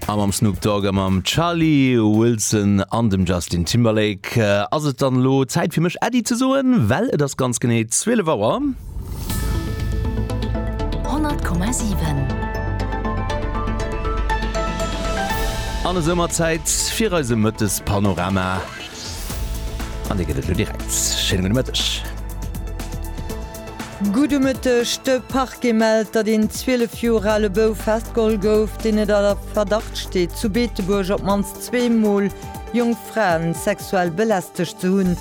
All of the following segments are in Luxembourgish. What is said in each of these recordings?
A mam Snoop Dogg a mam Charlie Wilson an dem Justin Timberlake äh, ass et dann lo Zäit fir mech Äddi ze soen, well et ass ganz genee 12 Auer. 100,7 An esou mat Zäit fir eise Mëttespanorama. An dee gëtt et lo direkt. Schéine gudde Mëtteg. Gudde Mëtteg, De Parquet mellt, datt een 12 Joer ale Bouf festgeholl gouf, deen et a Verdacht steet, zu Beetebuerg op d'mannst zwee Mol jonk Fraen sexuell belästegt ze hunn.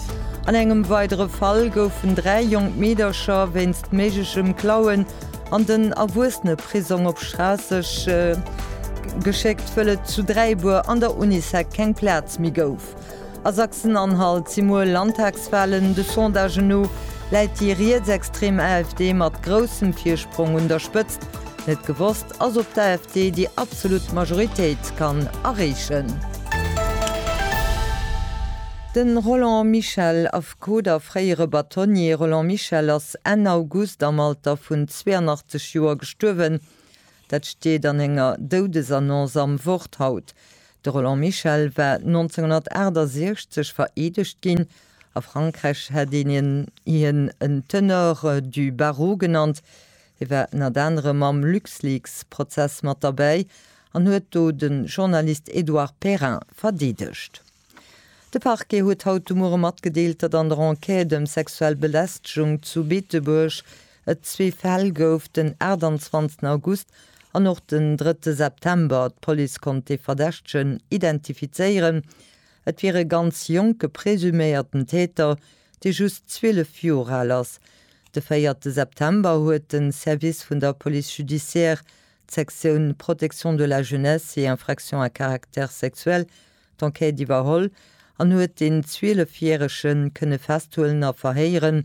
An engem weidere Fall goufen dräi jonk Meedercher wéinst méiglechem Klauen an den Erwuesseneprisong op Schraasseg geschéckt, wëll et zu Dräibuer an der Unisec keng Plaz méi gouf. A Sachsen-Anhalt si muer Landtagswalen. De Sondagen no läit déi rietsextrem AfD mat groussem Virsprong un der Spëtzt. Net gewosst ass, ob d'AfD déi absolut Majoritéit kann erreechen. De Roland Michel, Affekot a fréiere Batonnier Roland Michel ass Enn August am Alter vun 82 Joer gestuerwen. Dat steet an enger Doudesannonce am Wort haut. De Roland Michel war 1968 vereedegt ginn. A Frankräich hätt een hien en Tenor du barreau genannt. Hie war ënnert anerem am LuxLeaks-Prozess mat derbäi an huet do de Journalist Edouard Perrin verdeedegt. De Parquet huet haut de Muere matgedeelt, datt an der Enquête ëm sexuell Belästegung zu Beetebuerg et zwee Fäll gouf, den 28 August an och den 3 September. D'Police konnt de Verdächtegen identifizéieren. Et wier e ganz jonke presuméierten Täter, dee just 12 Joer al ass. De 4 September huet de Service vun der Police judiciaire, d'Sektioun Protection de la jeunesse et infractions à caractère sexuel, d'Enquête iwwerholl an huet den Zwielefjärege kënne festhuelen a verhéieren.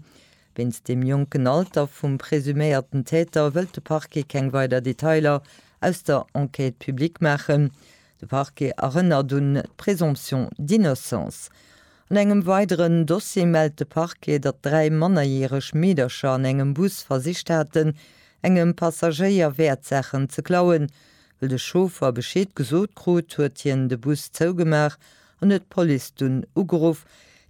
Wéinst dem jonken Alter vum presuméierten Täter wëllt de Parquet keng weider Detailer aus der Enquête public maachen. De Parquet erënnert un d'Présomption d'innocence. An engem weideren Dossier mellt de Parquet, datt dräi mannerjäreg Meedercher an engem Bus versicht haten, engem Passagéier Wäertsaachen ze klauen. Wëll de Chauffer Bescheed gesot krut, huet hien de Bus zougemaach an huet d'Police dunn ugeruff.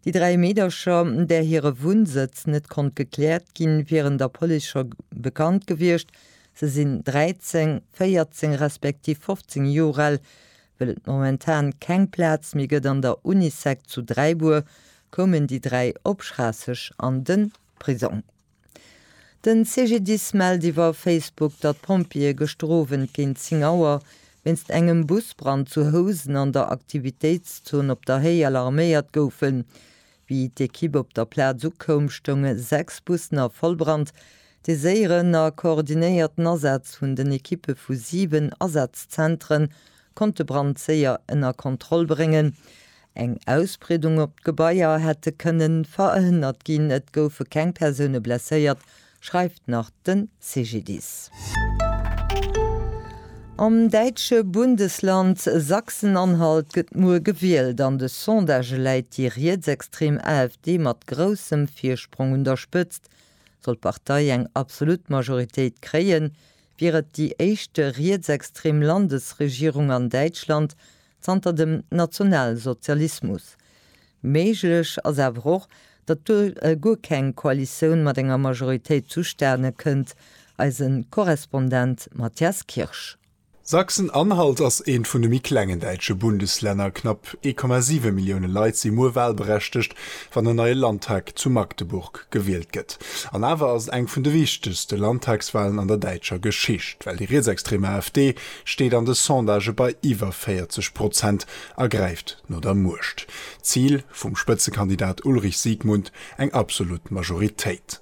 Déi dräi Meedercher, där hire Wunnsëtz net konnt gekläert ginn, wieren der Police scho bekannt gewiescht. Se sinn 13, 14 respektiv 15 Joer al. Wëll et momentan keng Plaz méi gëtt an der Unisec zu Dräibuer, koumen déi dräi op Schraasseg an de Prisong. Den CGDIS mellt iwwer Facebook, datt d'Pompjeeë gëschter Owend géint 10 Auer wéinst engem Busbrand zu Housen an der Aktivitéitszon Op der Héi alarméiert goufen. Wéi d'Ekipp op der Plaz ukoum, stounge sechs Bussen a Vollbrand. Dee séieren a koordinéierten Asaz vun den Ekippe vu siwen Asazzentren konnt de Brand séier ënner Kontroll bréngen. Eng Ausbreedung op d'Gebaier hätte kënne verhënnert ginn. Et goufe keng Persoune blesséiert, schreift nach de CGDIS. Am däitsche Bundesland Sachsen-Anhalt gëtt muer gewielt. An de Sondagë läit déi rietsextrem AfD mat groussem Virsprong un der Spëtzt. Sollt d'Partei eng absolut Majoritéit kréien, wier et déi éischt rietsextrem Landesregierung an Däitschland zanter dem Nationalsozialismus. Méiglech ass awer och, datt do guer keng Koalitioun mat enger Majoritéit zustane kënnt, eise Korrespondent Matthias Kirsch. Sachsen-Anhalt ass eent vun de méi klengen däitsche Bundeslänner. Knapp 1,7 Millioune Leit si muer wahlberechtegt, wann en neie Landtag zu Magdeburg gewielt gëtt. An awer ass et eng vun de wichtegste Landtagswalen an der däitscher Geschicht, well déi rietsextrem AfD steet an de Sondagë bei iwwer 40 Prozent a gräift no der Muecht. Zil vum Spëtzekandidat Ulrich Siegmund, eng absolut Majoritéit.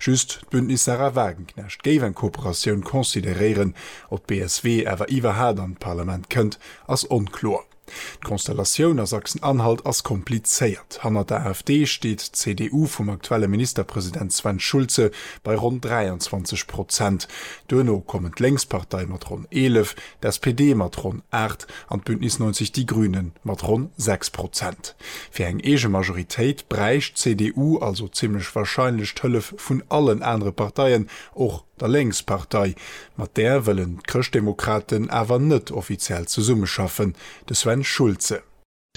Just d'Bündnis Sarah Wagenknecht géif eng Kooperatioun consideréieren. Ob d'BSW awer iwwerhaat an d'Parlament kënnt ass onkloer. D'Konstellatioun a Sachsen-Anhalt ass komplizéiert. Hannert der AfD steet d'CDU vum aktuelle Ministerpresident Sven Schulze bei ronn 23 Prozent. Duerno kommen d'Lénkspartei mat ronn 11, D'SPD mat ronn 8 an d'Bündnis 90 Die Grüne mat ronn 6 Prozent. Fir eng eege Majoritéit bräicht d'CDU also zimmlech warscheinlech d'Hëllef vun allen anere Parteien, och der Lénkspartei. Mat där wëllen d'Chrëschtdemokraten awer net offiziell zesummeschaffen. De Sven Schulze.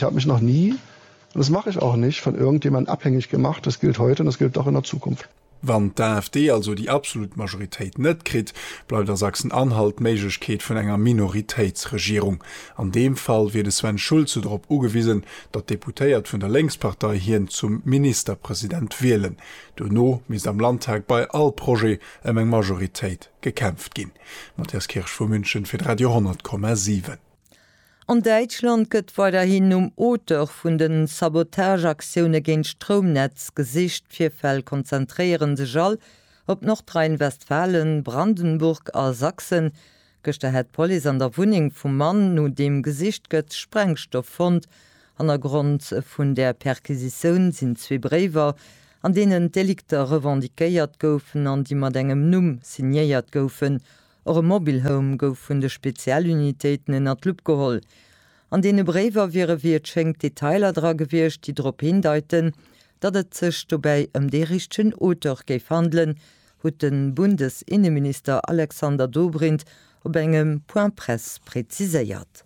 Ich habe mich noch nie, und das mache ich auch nicht, von irgendjemandem abhängig gemacht. Das gilt heute und das gilt auch in der Zukunft. Wann d'AfD also déi absolut Majoritéit net kritt, bleift a Sachsen-Anhalt d'Méiglechkeet vun enger Minoritéitsregierung. An deem Fall wier de Sven Schulze drop ugewisen, datt d'Deputéiert vun der Lénkspartei hien zum Ministerpresident wielen. Duerno misst am Landtag bei all Projet ëm eng Majoritéit gekämpft ginn. Matthias Kirsch vu München fir d'Radio 100,7. An Däitschland gëtt weiderhin nom Auteur vun de Sabotageaktioune géint d'Stroumnetz gesicht. D'Virfäll konzentréiere sech all op Nordrhein-Westfalen, Brandenburg a Sachsen. Gëschter hätt d'Police an der Wunneng vum Mann, no deem gesicht gëtt, Sprengstoff fonnt. Hannergrond vun där Perquisitioun sinn zwee Bréiwer, an deenen d'Delikter revendiquéiert goufen an déi mat engem Numm signéiert goufen, Och e Mobile Home gouf vun de Spezialunitéiten ënner d'Lupp geholl. An deene Bréiwer wiere wéi et schéngt Detailer dra gewiescht, déi drop hindeiten, datt et sech dobäi ëm dee richtegen Auteur géif handelen, huet de Bundesinneminister Alexander Dobrindt op engem Point-presse präziséiert.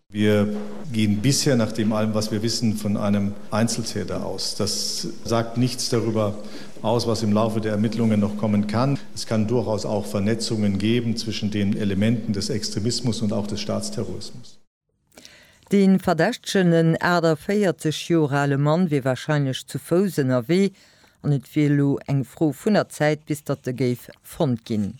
Wir gehen bisher nach dem allem, was wir wissen, von einem Einzeltäter aus. Das sagt nichts darüber aus, was im Laufe der Ermittlungen noch kommen kann. Es kann durchaus auch Vernetzungen geben zwischen den Elementen des Extremismus und auch des Staatsterrorismus. De Verdächtegen, en 48 Joer ale Mann, wier wahrscheinlech zu Fouss ënnerwee an et wier elo eng Fro vun der Zäit, bis datt e géif fonnt ginn.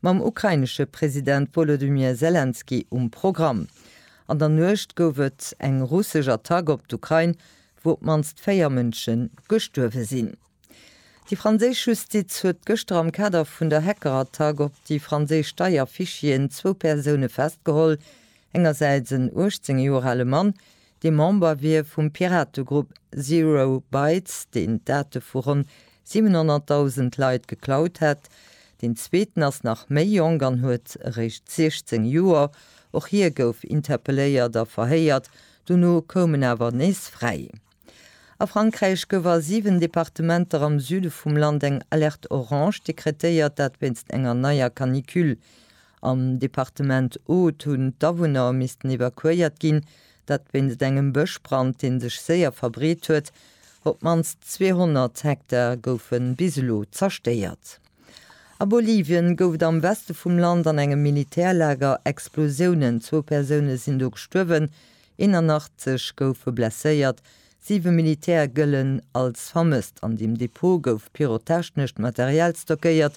mam ukrainesche President Wolodymyr Selenskyj um Programm. An der Nuecht gouf et eng russesch Attack op d'Ukrain, wou op d'mannst véier Mënsche gestuerwe sinn. Déi franséisch Justiz huet gëschter am Kader vun der Hackerattack op déi franséisch Steierfichieren zwou Persoune festgeholl, engersäits en 18 Joer ale Mann, dee Member wier vum Pirategrupp Zero Bytes, deen d'Date vu ronn 700.000 Leit geklaut hätt. Deen zweeten ass nach méi jonk an huet eréischt 16 Joer. Och hie gouf interpelléiert a verhéiert, dono koum en awer nees fräi. A Frankräich gouf a 7 Departementer am Süde vum Land eng Alerte Orange dekretéiert, dat wéinst enger neier Canicule. Am Departement Aude hunn d'Awunner missten evakuéiert ginn, dat wéinst engem Bëschbrand, dee sech séier verbreet huet. Op d'mannst 200 Hektar goufe bis elo zerstéiert. A Bolivien gouf et am Weste vum Land an engem Militärlager Explosiounen. Zwou Persoune sinn do gestuerwen, 81 goufe blesséiert, siwe Militäre gëllen als vermësst. An deem Depot gouf pyrotechnescht Material stockéiert,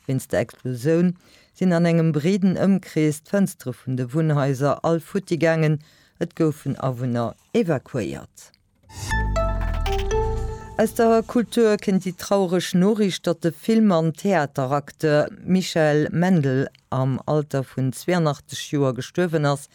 Wéinst der Explosioun sinn an engem breeden Ëmkrees d'Fënstere vun de Wunnhaiser all futti gaangen, et goufen Awunner evakuéiert. Aus der Kultur kéint déi traureg Noriicht, datt de Film an Theateracteur Michael Mendl am Alter vun 82 Joer gestuerwen ass.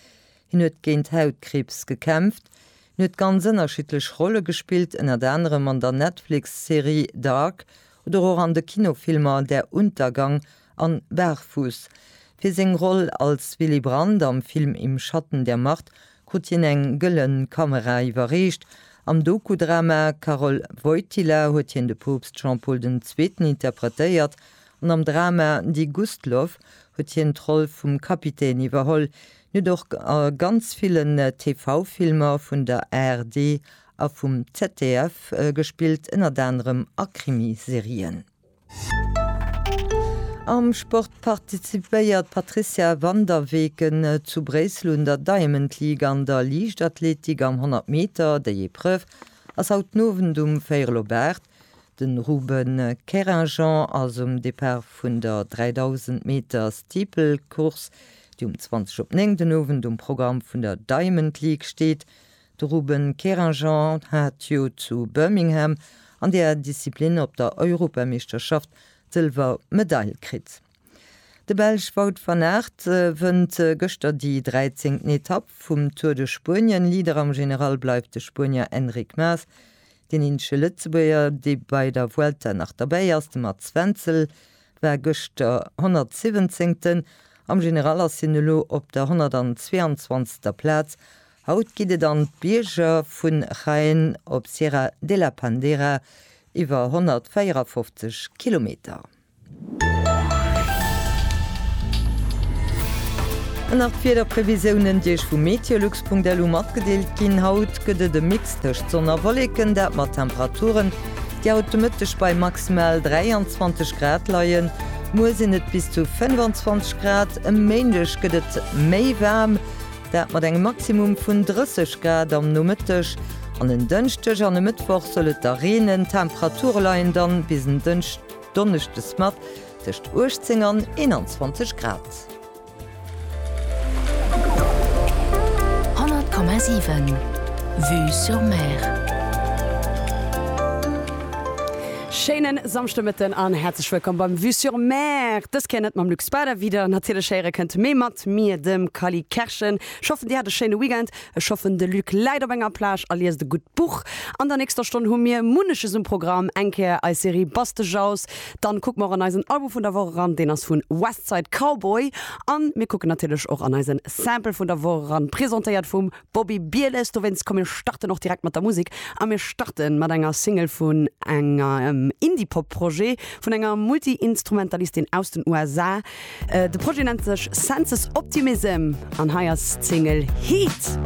Hien huet géint Hautkriibs gekämpft. Hien huet ganz ënnerschiddlech Rolle gespillt, ënnert anerem an der Netflix-Serie Dark oder och an de Kinofilmer Der Untergang an Barfuß. Fir seng Roll als Willy Brandt am Film Im Schatten der Macht krut hien eng Gëllen Kamera iwwerreecht. Am Doku-Drama Karol Wojtyla huet hien de Poopst Jean-Paul den Zweeten interpretéiert an am Drama Die Gustloff huet hien d'Roll vum Kapitän iwwerholl. Hien huet och a ganz villen TV-Filmer vun der ARD A vum ZDF gespillt, ënnert anerem a Krimiserien. Am Sport participéiert d'Patrizia van der Weken zu Bréissel un der Diamond League an der Liichtathletik am 100 Meter. Déi Epreuve ass haut den Owend um véierel op 8. Den Ruben Keringeon ass um Depart vun der 3000 Meter Steeple Course, déi um 20 op 9 den Owend um Programm vun der Diamond League steet. De Ruben Kerinjan hat jo zu Birmingham an där Disziplin op der Europameeschterschaft d'Sëlwer Medail kritt. De Belsch Wout van Aert wënnt gëschter déi 13. Etapp vum Tour de Spuenien. Leader am General bleift de Spuenier Enric Mas. Deen eenzege Lëtzebuerger, dee bei der Vuelta nach derbäi ass, de Mats Wenzel, war gëschter 117. Am General ass hien elo op der 122. Plaz Haut geet et an d'Bierger vun Jaén op Sierra de la Pandera, iwwer 154 Kilometer. An nach d'Wiederprevisiounen, déi Iech vu meteolux.lu matgedeelt ginn. Haut gëtt et e Mix tëscht Sonn a Wolleken, dat mat Temperaturen, déi haut de Mëtteg bei maximal 23 Grad leien. Muer sinn et bis zu 25 Grad. E Méindeg gëtt et méi waarm. Dat mat engem Maximum vun 30 Grad am Nomëtteg. An en Dënschdeg an e Mëttwoch soll et da reenen. D'Temperature leien dann bis en Dënschdonneschdes mat tëscht 18 an 21 Grad. 100,7 Vue sur Mer. Schéinen Samschdemëtten an häerzlech wëllkomm beim Vue sur Mer. Dës Kéier net mam Luc Spader wieder, natierlech héiere kënnt, mee mat mir, dem Kally Kerschen. Ech hoffen dir hat e schéine Weekend. Ech hoffen de Luc läit op enger Plage a liest e gutt Buch. An der nächster Stonn hu mir munneches um Programm, eng Kéier eis Serie Bastejaus, dann kucke mer och an eisen Album vun der Woch eran, deen ass vun Westside Cowboy, an mir kucken natierlech och an eisen Sample vun der Woch eran, presentéiert vum Bobby Bieles, dowéinst komm mir starten och direkt mat der Musek a mir starte mat enger Single vun engem Indie-Pop Projet vun enger Multi-Instrumentalistin aus den USA. De Projet nennt sech Senses Optimism an hei ass d'Single Heat.